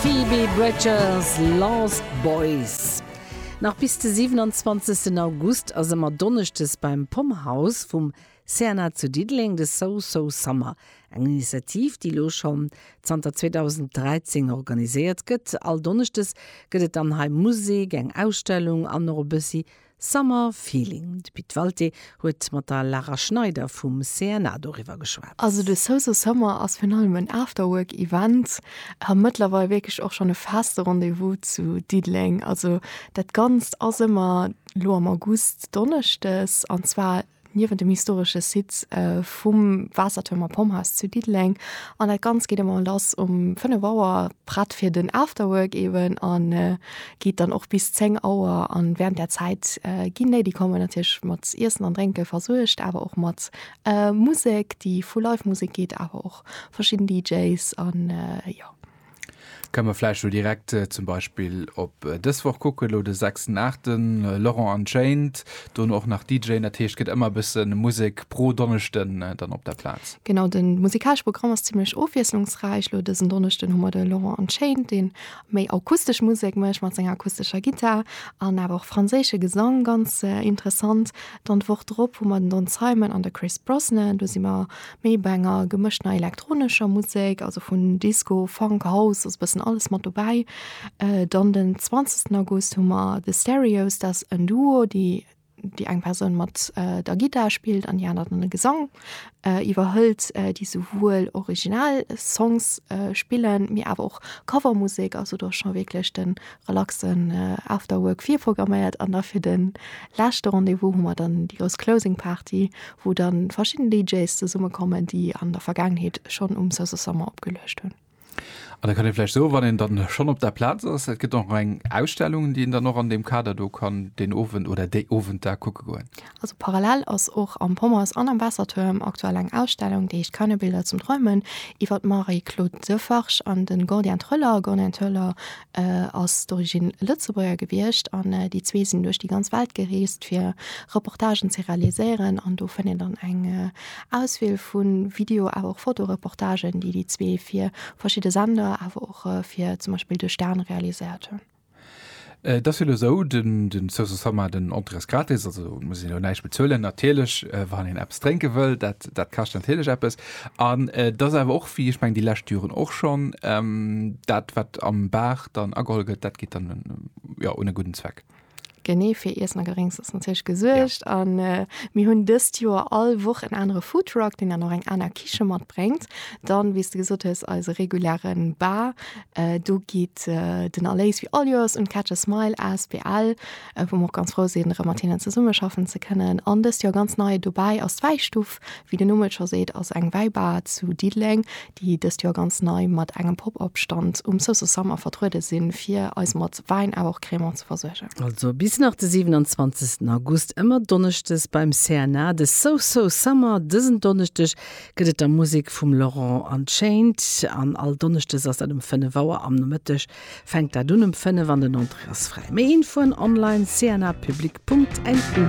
Phoebe Bridgers, Lost Boys. Nach bis de 27 August ass ëmmer Donneschdes beim Pom House vum CNA zu Diddeleng de So So Summer, eng Initiativ, déi elo schonn zanter 2013 organiséiert gëtt. All Donneschdes gëtt et dann hei Musek, eng Ausstellung an och e bëssi Summer Feeling, de Pit Walté huet mat der Lara Schneider vum CNA doriwwer geschwat. Also de Soso Summer ass virun allem en Afterwork Event a mëttlerweil wierklech och schonn e feste Rendez-vous zu Diddeleng. Also dat Ganzt ass ëmmer lo am August Donneschdes an zwar. niewent dem historesche Site vum Waassertuerm a Pomphaus zu Diddeleng. An dat Ganzt geet ëmmer lass um 5 Auer, prett fir den Afterwork eeben, a geet dann och bis 10 Auer. A wärend där Zäit ginn déi, déi kommen, natierlech mat Iessen an Drénke versuergt, awer och mat Musek, déi vu Live-Musek geet, awer och verschidden DJs an jo. Ka mer vläicht elo direkt zum Beispill op dës Woch kucken, elo de sechsten Aachten, Laurent Unchained, dono och nach DJen, dat heescht gëtt ëmmer e bësse Musek pro Donneschden dann op der Plaz. Genau, de musikalesch Programm ass zimlech ofwiesslungsräich. Elo dësen Donneschden hu mer de Laurent Unchained, dee méi akustesch Musek mécht mat senger akustescher Gittar an awer och franséische Gesang, ganz interessant. Dann d'Woch drop hu mer den Don Simon an de Chris Brosnan, do si mer. Mee bei enger gemëschter elektronescher Musek, also vun Disco, Funk, House, ass e bëssen alles mat dobäi. Dann den 20. August hu mer The Stereos, dat ass en Duo, déi, déi eng Persoun mat der Gittar spillt an déi aner dann de Gesang iwwerhëlt, déi souwuel original Songs spillen, mee awer och Covermusek, also do ass scho wierklech de relaxen Afterwork virprogramméiert an da fir de leschte Rendez-vous hu mer dann déi grouss Closing Party, wou dann verschidden DJs zesummekommen, déi an der Vergaangenheet schonn um Sosa Summer opgeluecht hunn. An da kann ee vläicht soen, wann een dann schonn op der Plaz ass, et gëtt och nach eng Ausstellung, déi een dann och an deem Kader do kann deen Owend oder déi Owenter kucke goen. Also parallel ass och am Pommers an am Waassertuerm aktuell eng Ausstellung, déi heescht Keine Bilder zum Träumen, iwwer d'Marie-Claude Defarge an de Gordien Thöller. Gordien Thöller ass d'origine Lëtzebuerger gewiescht an déi zwee sinn duerch déi ganz Welt gereest, fir Reportagen ze realiséieren. An do fënnt een dann eng Auswiel vu Video awer och Fotoreportagen, déi déi zwee fir verschidde Sender awer och fir zum Beispill de Stern realiséiert hunn. Et ass jo elo esou, den, den Social Summer, den Entrées gratis, also et muss een elo näischt bezuelen, natierlech, wann een eppes drénke wëll, dat, dat kascht natierlech eppes. An et ass awer och, wéi ech mengen déi lescht Joren och schonn, dat wat am Bar dann ageholl gëtt, dat geet dann, jo, un e gudden Zweck. Genee fir Iessen a Gedrénks ass natierlech gesuergt. Ja. An äh, mir hunn dëst Joer all Woch en anere Foodtruck, den dann och eng aner Kiche matbréngt. Dann, wéi du gesot hues, eise regulären Bar. Äh, do geet äh, den Erléis wie all Joers un Catch a Smile asbl, äh, wou mer och ganz frou sinn, erëm mat hinnen zesummeschaffen ze kënnen. An dëst Joer ganz nei dobäi ass d'Wäistuf. Wéi den Numm et scho seet, ass eng Wäibar zu Diddeleng, déi dëst Joer ganz nei mat engem Pop-Up Stand um Sousou Summer vertruede sinn, fir eis mat Wäin awer och Crémant ze versuergen. Also bis nach de 27 August, ëmmer Donneschdes beim CNA, de Sousou Summer. Dësen Donneschdeg gëtt et da Musek vum Laurent Unchained an all Donneschdes ass dat um 5 Auer am Nomëtteg fänkt dat un um 5 an den Entrée ass fräi. Méi Infoen online cnapublic.lu.